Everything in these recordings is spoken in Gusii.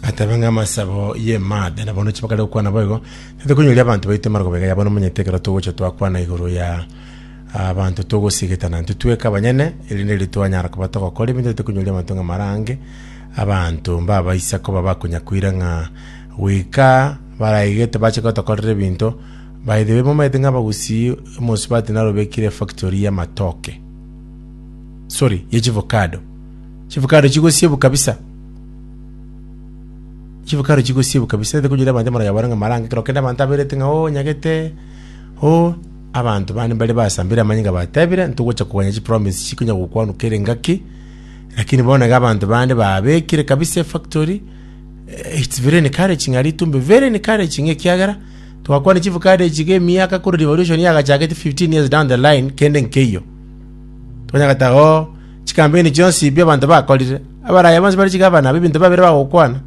ateba ng'a amasabo y'emada na bono chibakare gokwana boigo titokonyoria abanto baito emaroko baiga ya bono omanyete ekero togocha twakwana igoro ya abanto togosigetana intwe tweka abanyene erinde riria twanyara koba togokora ebinto bitokonyoria abanto ng'a marange abanto mbabaisa koba bakonya koira ng'a goika baraigete bache gotokorera ebinto by the way momanyete ng'a abagusii omosubati narobekire efactory y'amatoke sorry ye chivocado Chifukaro chigosiebu kabisa, chifukaro chigosiebu kabisa. Ere konyora abanto amang'ana yabora ng'a marange ekero kende abanto aberete ng'a oo nyagete oo. Abanto bande mbare basambire amanyinga batebire ntogocha koganya chipromise echi chikonya gokwanwa kera engaki, lakini bono iga abanto bande babekire kabisa efactory eh, it's very encouraging aria Itumbe, very encouraging ekiagera twakwana chifukaro echi iga emiaka korwa revolution yagachakete 15 years down the line kende nkeiyo. Tokonyora goteba oo. chikambeini chionsi bi'abanto bakorire, abaraya bonsi bare chigabana b'ebinto babere bagokwana,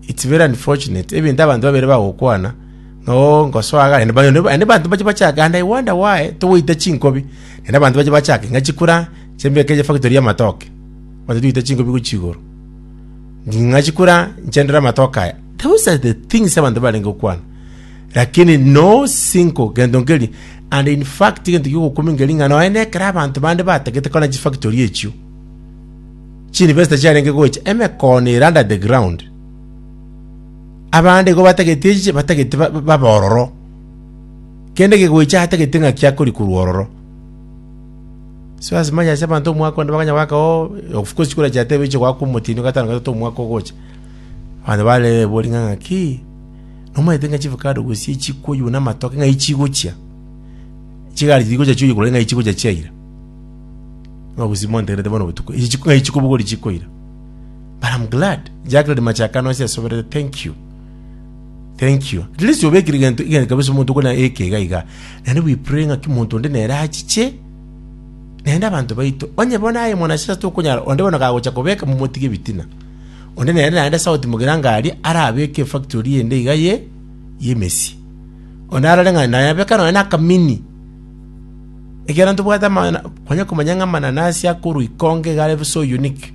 it's very unfortunate, ebinto abanto babere bagokwana, ng'a oo ngosoa iga, naende ba- naende abanto bache bachake, and I wonder why togoita chinkobi, naende abanto bache bachake ng'a chikura chimbeke efactory y'amatoke, abanto togoita chinkobi gochia igoro, ng'a chikura nchendere amatoke aya, those are the things abanto barenge gokwana. lakini no sinko gento nkeri and in fact gento gigokumi nkeri ng'a noe nekera abanto bande batagete kona chifactory echio chinvesta chiarenge gocha emekono ere under the ground abande igo batagete echiche batagete ba- ba- baba ororo kende gegoicha atagete ng'a kiakori korwa ororo so as much as abanto omwaka onde bakanya goaka o of course chikora chiatebe eche goaka omotino gatano gatato omwaka ogocha abanto bare boring'a ng'a ki Nomanyete ng'a chivakado gose chikuyu namatoke ng'ai chigochia? Chigari tigochia chioyo korende ng'ai chigochia chia ira. Ng'a gose mwantegerete bono botuko. Echi chiku ng'ai chikobogori chikoira. But I'm glad. Jack redi machakano ase asoberete. Thank you. Thank you. At least obekire gento igento kabisa omonto okona eke iga iga. Naende we pray ng'a kimonto onde nere achiche naende abanto baito. Onye bono aye mwanasiasa tokonyara onde bono kagocha kobeka momotige ebitina. Onde nere naende South Mogirangaria arabeke efactory ende iga ye y'emesie. Onde arore ng'a naye abeka nonya nakamini. Ekiagera ntobwate amana kwanya komanya ng'a amananasi akorwa ikonge iga are so unique.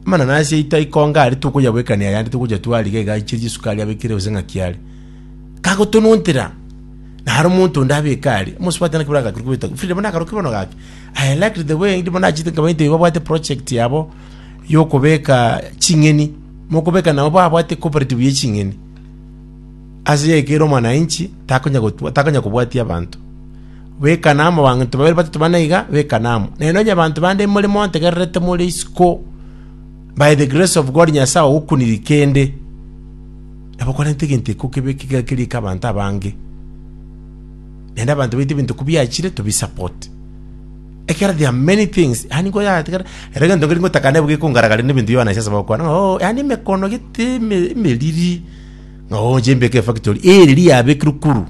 Amananasi aito aikonge aria tokoyabwekania ayande togocha twariga iga achie chisukari abekire gose ng'aki are. Kagotonontera naro omonto onde abeke aria. Amos bwate naki bora gakuru kobeta. Frida bono akaro ki bono gaki. I liked the way ndimo nachete nkaba into babwate project yabo yokobeka ching'eni mokobeka nabo babwate cooperative ye ching'eni ase yaikere omwananchi takonya gotwa takonya kobwatia abanto beka namo banto babere batatu bana iga beka namo naye nonya abanto bande more montegererete more isiko by the grace of God nyasae ogokuniri kende nabo kwarente egento iko kebe kiga kerika abanto abange naende abanto baito ebinto ko biachire to bi support. Ekero there are many things yaani ko yatigara ere egento nkeri ngotaka nabo gekongaragaria na ebinto Yohana ase ase bagokwana ng'a oo yaani emekono gete eme emeriri ng'a oo inche mbeke efactory eriri yabekirwe kuru.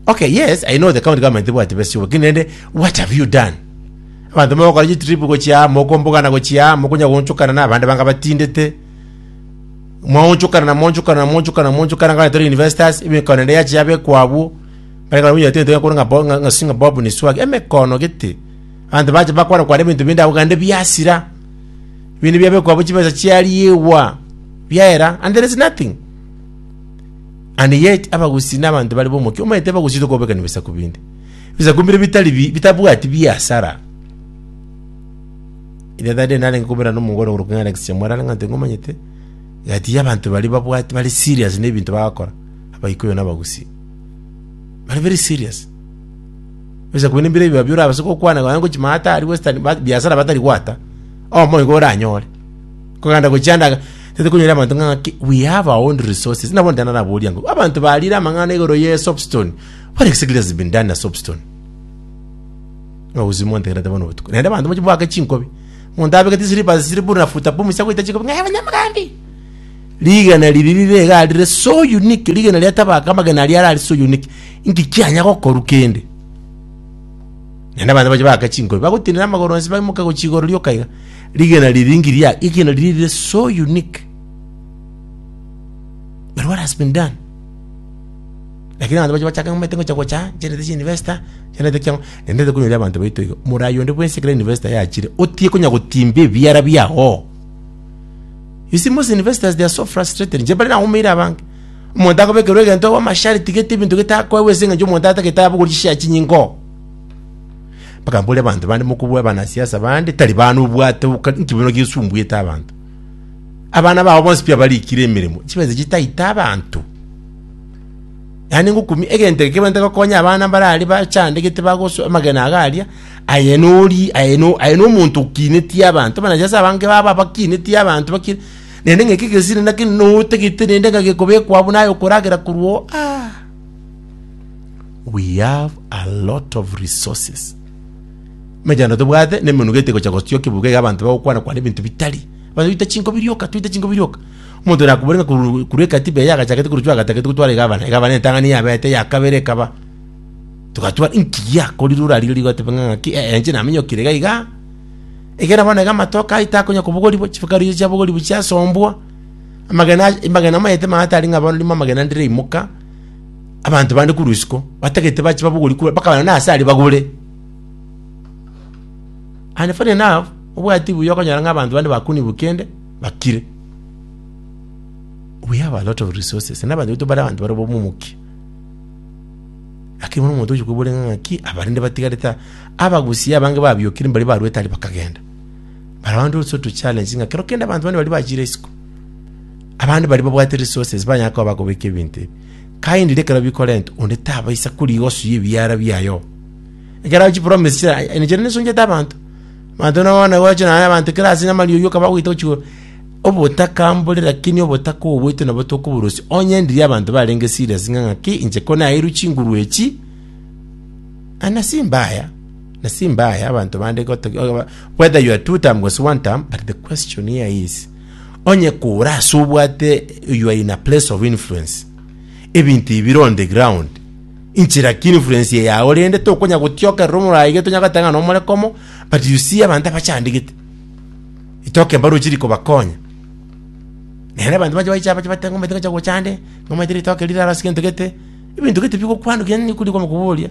Okay yes I know the county government tebwati besa chiabo lakini naende what have you done? Abanto mogokora chitrip gochia aa mokombogana gochia aa mokonya goonchokana na abande banga batindete Moonchokana na moonchokana na moonchokana na moonchokana ng'a tore universities, emekano ende yache yabekwa abwo, bare ng'a winyateete ngakore ng'a Bo- ng'a- ng'a singa Bob ni Swag, emekoono gete. Abanto bache bakwana kwana ebinto binde abwo gande biasira. Binde biabekwa abwo chibesa chiariegwa, biaera, and there is nothing. And yet abagusi na abanto bare bomokia omanyete abagusi tokobekani ebisaku binde. Ebisaku mbire bitari bi- bitabwati biasara. Ere tari narenge koberana omong'ina ore korokwa Alex Chamwera are ng'anto ing'omanyete, egati y'abanto baria babwate bare serious nebinto bagakora, Abaikuyu na Abagusii. Bare very serious. Ebisa kobua nembira ebiba bia orabase gokwana nonya ngochia maya ata aria western ba- biasara batari gwata, oyomo igo oranyore. Kogenda gochia ande iga, tete konyora abanto ng'a ng'aki, we have our own resources. Buna bono tena naboria ng'a, abanto barire amang'ana igoro ye soapstone, what exactly has been done na soapstone? Obosimi montegerete bono obotuko. Naende abanto mochi boake chinkobi. Monto abegeti slippers siri buru na futa pumu sia goita chinkobi ng'aye banyamogambi. Rigena riri rire iga rire so unique rigena ria tabaka amagena aria arari so unique. Inki kianya gokoru kende? Naende abanto mochi boake chinkobi bagotinera amagoro onsi baimoke gochia igoro rioka iga. Rigena riri inki ria rigena riri rire so unique. But what has been done? Lakini abanto baria bachake ng'umete ngochia gocha chiarete chia university, chiarete kia ng'o, naende ntabe konyora abanto baito iga. Morai onde bwensi ekero university yachire, otiye konya gotimba ebiara biago. You see most universities they are so frustrated, inche mbare nagomeire abange. Omonto akobekerwa egento ewe amasharti gete ebinto gete akoewa ase eng'encho omonto atagete abogwe chishare chinyingo. Mpaka mbore abanto bande mokobua abanasiasa bande tari bana obwate oka inki bono gesumbuete abanto. Abana bao bonsi pi abarikire emeremo, chibensa chitaita abanto. Naende ngokumia egento eke kebwenerete gokonya abana mbare aria bachandegete bagosoa amagena ago aria, aye nori, aye no, aye nomonto okinetie abanto, abanacha ase abange baba bakinetie abanto baki, naende ng'a eke egesiri naki notagete naende ng'a gekobekwa abwo naye okoragera korwa oo, aah. We have a lot of resources, emechando tobwate na emenugo ete gocha gotiokia ebugo iga abanto bagokwana kwana ebinto bitari, abanto baita chinko birioka, toita chinko birioka. Omonto oria akobore ng'a korwa korwa ekatiba eye agachakete korochio agatagete gotwara egavana, egavana entang'ani yabete ya kabere ekaba. Togatwara inki giakorire orarigerie goteba ng'a ng'aki eh, eh, inche naminyokire iga iga. Egere bono iga amatoke aye takonya kobogorigwa, chifukari echi chiabogorigwa chiasombwa, amagena aye amagena maete maate aria ng'a bono rimo amagena ndiraimoka, abanto bande korwa isiko, batagete bache babogorigwe korwa bakaba nonye ase aria bagore. And funny enough, obwati buya okonyora ng'a abanto bande bakunigwe kende. bakire we have a lot of resources na bantu betu bare abantu bare bomomoki lakini bono omonto ochikwebore ng'aki abarinde batigarete abagusia abange babiokire mbari barwete ari bakagenda but I want also to challenge ng'a kero kende abantu bane bari bachire isiko abande bari babwate resources banyara koba bakobeka ebinto ebi kaindire ekero bikorenta onde tabaisa korigosu y'ebiara biayo ekero chipromise chira nichire nesunchete abanto Abanto nabo bono naboche naye abanto kera ase nyamari oyio okaba ogoita gochigwa obotaka mbore rakini obotaka obo bweito nabo tokoborosia. Onye ndiria abanto barenge serious ng'a ng'aki inche ko naeirwe chinguru echi, ah nasi mbaya, nasi mbaya abanto bande goto whether you are two term gose one term but the question here is onye kore ase obwate you are in a place of influence, ebinto ebi bire on the ground, inche lakini influence eye yao rende tokonya gotiokerera omorayi iga tonya goteba ng'a nomore komo but you see abanto abachandigete itoke mbare ochiri kobakonya nere abanto bache baiche abache bateba ng'omanyete ngocha gocha ande ng'omanyete ritoke rire arase gento gete ebinto gete bigokwanwa kinya nigo rikoba koboria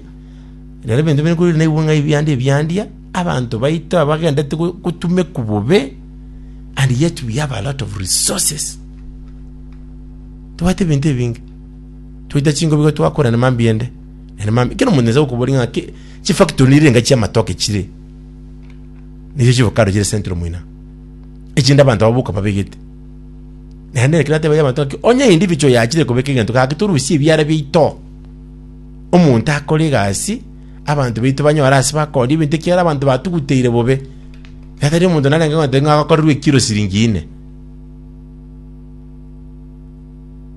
rero ebinto bire korire naigwe ng'a ebiande ebiandia abanto baito abagendete go- gotumekwa bobe and yet we have a lot of resources tobwate ebinto ebinge. Toite chingobi igo twakorana mambia ende, ere mambia. Kero omonto nase gokoboria ng'a ki chifactory nire enga chi'amatoke chire. Nicho chivocado chire central moina. Echinde abanto abo boka babegete. Naende ekero natebia abanto ng'aki onye individual yachire kobeka egento gaki torusie ebiara biaito. Omonto akore egasi, abanto baito banyore ase bakore ebinto ekiagera abanto batuguteire bobe. Ekero omonto narenge goteba ng'a akorerwe ekiro siringi ine.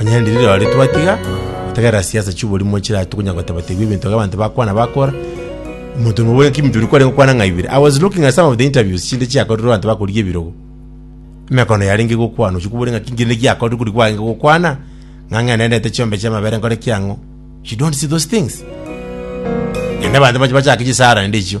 Onye riri rirorio twatiga gotegerera siasa chi'oborimo chirare tokonya gotebategwa ebinto iga abanto bakwana bakora, omonto omo bwe Kim Njoroge kwarenge gokwana ng'a ibere. I was looking at some of the interviews chinde chiakorirwe abanto bakorigia ebirogo. Emekano yarenge gokwana ochia kobora ng'a ki kende giakorire kori kwarenge gokwana ng'a ng'a nere nete chiombe chi'amabere nkore ki ang'o. You don't see those things. Naende abanto mbache bachake chisara naende echio.